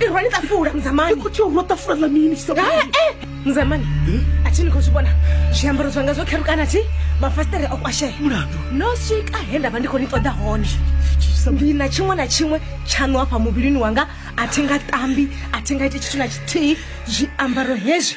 irwa ni tafula mzamani kuti urwa tafula la mini mzamani ati ni khou zwi vhona zwiambaro zwanga zwo kherukana ti mafasitere o kwashea mulandu no swika he nda vha ndi khou ni ṱoḓa hone ndi na tshiṅwe na tshiṅwe tshaṋu hafha muvhilini wanga a thi nga tambi a thi nga iti tshithu na tshithihi zwiambaro hezwi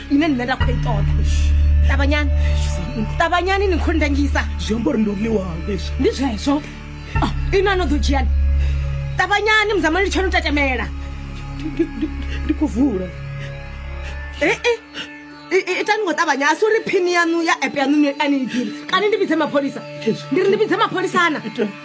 ine nṋe nda khou i ṱoḓa ṱavhanyani ṱavhanyani ni khou ndangisa zwi amba uri ndo ḽiwaho leswi ndi zwezwo Ah, ino ano ḓo dzhiani ṱavhanyani muzamani litshani u tatamela ndi khou vula Eh, eh. I- i- itani ngo ṱavhanya a si uri phini yanu ya app yanu ni- a ni i ḓivhi kana ndi vhidze mapholisa ndi ri ndi vhidze mapholisana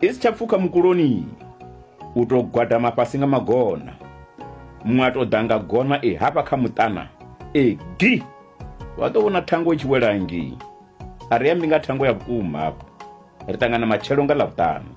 i si tsha pfuka mukuloni u tou gwadama fhasi nga magona muṅwe a tou ḓa nga gona e hafha kha muṱana e gi wa ḓo vhona thango i tshi wela ngei a ri ambi nga thango ya vhukuma hafho ri ṱangana matshelo nga ḽavhuṱanu